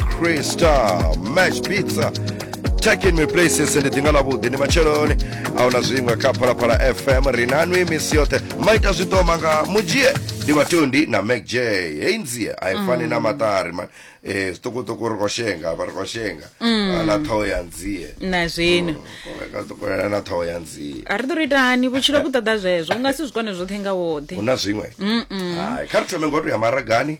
crystal mash pizza takin me places ndi ḓinga ḽavhuḓi ndi matsheloni a huna zwiṅwe kha phalaphala fm ri na nwi misi yoṱhe maita zwiṱoma nga mudzhie ndi vhatondi na mac j hei nzie a i fani na maṱari man um zwiṱukuṱuku ri khou shenga vha ri khou shenga Ah, na ṱhoho ya nzie na zwino ka ṱukulela na ṱhoho ya nzie a ri ḓo ri ita hani vhutshilo vhu ṱoḓa zwezwo u nga si zwi kone zwoṱhe nga woṱhe hu na zwiṅwe Hai, kha ri thome ngoto ya maragani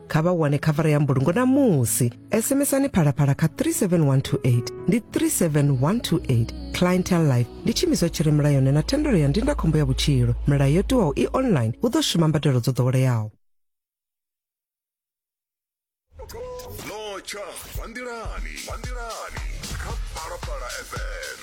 kha vha wane khavara ya mbulungo na musi sms-ani phalaphala kha 37128 ndi 37128 clientel life ndi tshimiswa tshi re mulayoni na thendelo ya ndindakhombo ya vhutshilo milayo yo tiwaho i online hu ḓo shuma mbadelo dzo ḓoweleaho zwa nḓilani zwa nḓilani kha phalaphala fm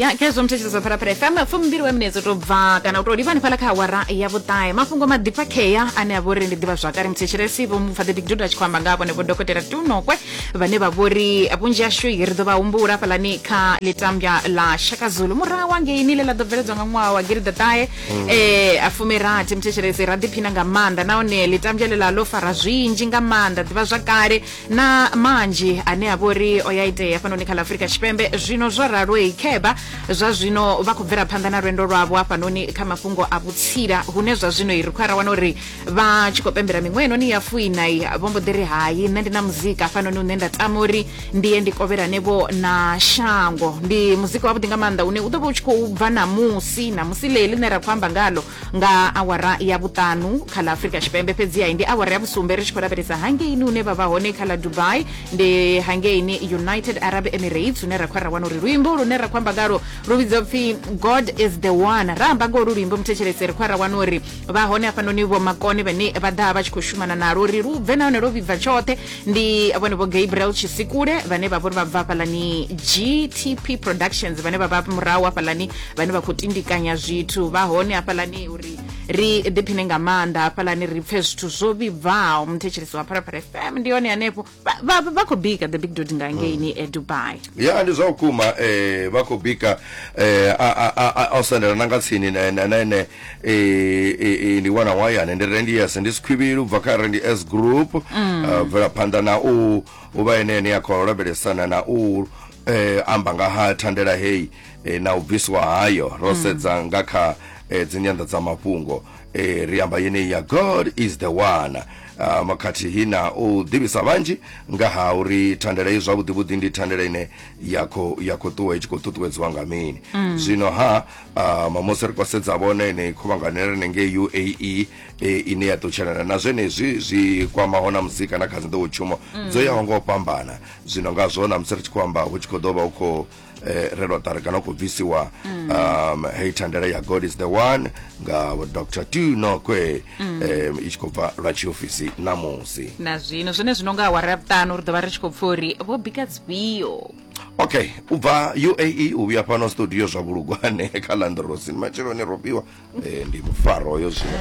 ya khezwo muthetshedzo zwa phalaphala fm fumbili wa minetse to bva kana u to livha hanefhala kha awara ya vhuṱahe mafhungo maḓipfakhea ane a vha uri ndi ḓivha zwakale muthetshelesi vho mufhaḓe big dudu a tshi khou amba nga vhone vho dokotela tunokwe vhane vha vhori vhunzhi ashu ri ḓo vha humbula hafhalani kha litambya ḽa shaka zulu murahu angeini ḽe ḽa ḓo bveledzwa nga ṅwaha wa giriḓaṱahe ee a fumirathi muthetshelesi ra ḓiphina nga maanḓa nahone ḽitambya ḽeḽa ḽo fara zwinzhi nga maanḓa ḓivha zwa kale na manzhi ane a vha uri o ya itea fhanoni kha ḽa afurika tshipembe zwino zwo raloyi kheba zwa zwino vha khou bvela phanḓa na lwendo lwavho hafhanoni kha mafhungo a vhutsila hune zwa zwino i ri khou ara wana uri vha tshi khou pembela miṅwaha inoni ya fuinai vho mbo ḓi ri hai nṋe ndi na muzika hafhanoni une nda tama uri ndi ye ndi kovhelanevho na shango ndi muzika wavhuḓi nga maanḓa une u ḓo vha u tshi khou bva namusi namusi ḽe ḽine ra khou amba ngalo nga awara ya vhuṱanu kha ḽa afurika tshipembe fhedziha ndi awara ya vhusumbe ri tshi khou lavhelesa hangeini hune vha vha hone kha ḽa dubai ndi hangeini united arab emirates hune ra khou ra wana uri luimbo lune ra khou amba ngalo lu vhidzwa pfhi god is the one ra amba ngolu luimbo muthetshelese ri khou ra wana uri vha hone hafhanoni vho makone vhane vha ḓa vha tshi khou shumana nalo uri lu bve nahone lwo vhibva tshoṱhe ndi vhone vho gabriel tshisikule vhane vha vhori vha bva hafhalani gtp productions vhane vha vha murahu hafhalani vhane vha khou tindikanya zwithu vha hone hafhalani uri ri ḓiphine nga maanḓa hafhalani ri pfe zwithu zwo vhibvaho muthetshelesi wa pharapara fm ndi hone hanefho vha- vha vha khou bika the big dot nga ngeini e dubai ya ndi zwa vhukuma eh vha khou bika eh a a a- a a u sendela na nga tsini na na na ene eh eh, eh, ndi wana wayane ndi rendi yes ndi sikhwivhili ubva kha rendi s group eh, bvela phanḓa na u u vha ene ene ya khou lavhelesana na u eh amba nga ha thandela heyi eh, na u bviswa hayo ro sedza nga kha eh, dzinyanḓadzamafhungo e, ri amba yeneyi ya god is the one um, khathihi na u ḓivhisa vhanzhi nga ha uri thandela i zwavhuḓivhuḓi ndi thandela ine ya khou ya khou ṱuwa i tshi khou ṱuṱuwedziwa nga mini mm. zwino ha um, musi ri khou sedza vhone ine khuvhangano ya rine ngei uae e, ine ya ṱutshelana na zwenezwi zwi kwamaho na musi kana kha dzinḓowotshuma mm. dzo yaho nga u fhambana zwino ngazwo na musi ri tshi khou amba hu tshi khou ḓo vha hu khou eh, re lotari kana u khou bvisiwa mm. um hei thandela ya god is the one nga dr t nokwe mm. um i tshi khou bva lwa tshiofisi namusi na zwino zwone zwino nga awara ya vhuṱanu ri ḓo vha ri tshi khou pfa uri vho bika dzifhio okay u bva uae u vhuya fhano studio zwa vhulugwane kha landrosin matsheloni ro fhiwa um eh, ndi mufaro yo zwino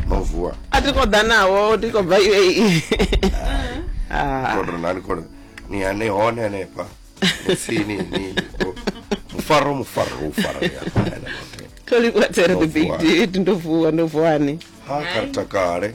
no vuwa a ti khou ḓa nawo ti khou bva uae ah. kodronani kodo ni ane hone hanefha Sini ni bo. Mufaro mufaro mufaro ya. Kali kwa tsere the big Ndovuwa. did ndovuwa ndovuwani. Ha karta kare.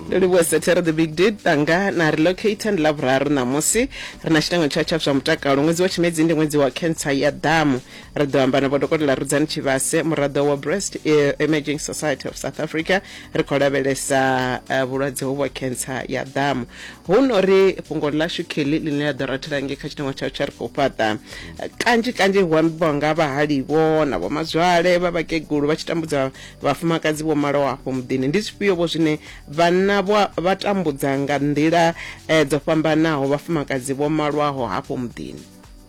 ndo livhuwa sathera the big did tanga na relocate ndi lavhuraru ṋamusi ri na tshitengo tsha tsha zwa mutakalo ṅwedzi wa tshimedzi ndi ṅwedzi wa cancer ya damu ri ḓo amba na vhodokotela rudzani tshivhase muraḓo wa breast eh, emerging society of south africa ri khou lavhelesa eh, vhulwadze hovhu ha cancer ya ḓamu hu no ri fhungo ḽashu kelly ḽine ḽa ḓo rathela ngei kha tshiteṅwa tshau tsha ri khou fhaṱa Eh, kanzhi kanzhi hu ambiwa nga vhahalivo na vhomazwale vha vhakegulu vha tshi tambudza vhafumakadzi vho malaho afho muḓini ndi zwifhio vho zwine vhanna vha vha tambudza nga nḓila eh, dzo fhambanaho vhafumakadzi vho malwaho hafho muḓini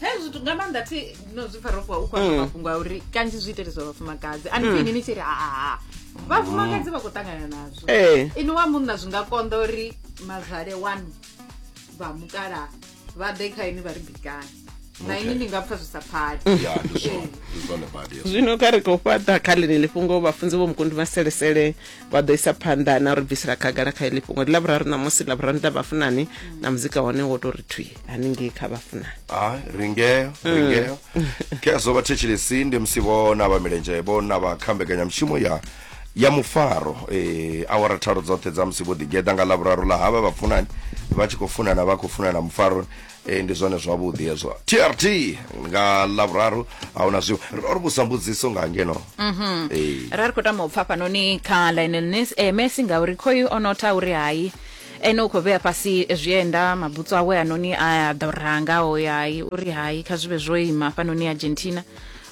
hezwi zwithu nga maanḓa thi no zwi pfa rofuwa u khou amba mafhungo a uri kanzhi zwi iteliswa vhafumakadzi ani pfini ni tshi ri haa vhafumakadzi vha khou ṱangana nazwo Eh. ini wa munna zwi nga konḓa uri mazwale wanu vha mukala vha ḓe kha ini vha ri bikani na ini ni nga pfa zwi sa pfali ya ndi zwone ndi zwone badi hezwo. zwino kha ri khou fhaṱa kha ḽeneḽi fhungo vhafunzi vho mukundi maselesele vha ḓo isa phanḓa na uri bvisela khagala kha iḽi fhungo ndi lavhuraru ṋamusi lavhuraru nda vhafunani na muzika hone wo to ri thwi haningei kha vhafunani ha ringeo mm. ringeo kezo vhathetshelesi ndi musi vho na vha milenzhe vho na vha kha mbekanyamushumo ya ya mufaro eh, awara tharo dzoṱhe dza musi vho ḓigeḓa nga lavhuraru ḽa havha vhafunani vha tshi khou funana vha khou funana mufaroni ee ndi zwone zwavhuḓi hezwo trt nga lavhuraru a hu na zwiwo ro ri vhusa mbudziso nga ngeno ee ra ri khou tama u pfa fhanoni kha line line eh, messi ngauri khoyu o notha uri hai ene u khou vhea fhasi zwienda mabutsu awe anoni a ḓo ranga o ya hai uri hai kha zwi vhe zwo ima fhanoni argentina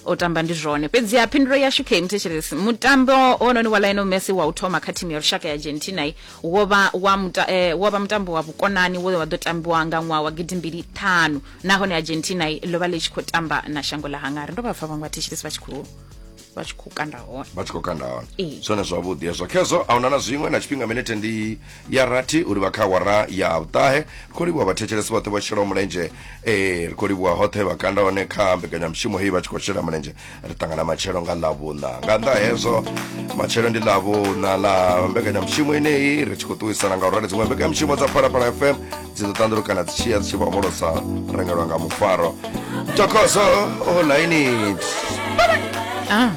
o tamba ndi zwone fhedzi ha phindulo yashu khe mthetshelesi mutambo wononi wa lionel messi wa u thoma kha thimu ya lushaka ya argentina wo vha wa muta, eh, wo vha mutambo wa vhukonani wo wa ḓo tambiwa nga ṅwaha wa gidimbili ṱhanu nahone argentina ḽo vha ḽi tshi khou tamba na shango ḽa hangari ndo vha pfa vhaṅwe vhathetshelesi vha tshi khou vha tshi khou kanda hone vha tshi khou kanda hone zwone zwavhuḓi hezwo khezwo a huna na zwiṅwe na tshifhinga minete ndi ya rathi u livha kha awara ya vhuṱahe ri khou livhuwa vhathetshelesi vhoṱhe vho shelaho mulenzhe ee ri khou livhuwa hoṱhe vha kanda hone kha mbekanyamushumo heyi vha tshi khou shela mulenzhe ri ṱangana matshelo nga ḽavhuṋa nga nnḓa hezwo matshelo ndi ḽavhuṋa ḽa mbekanyamushumo ineyi ri tshi khou ṱuwisana nga u rali dziṅwe mbekanyamushumo dza phalaphala fm dzi ḓo ṱanḓulukana dzi tshiya dzi tshi vha homolosa rengelwa nga mufaro tokoso olaini ah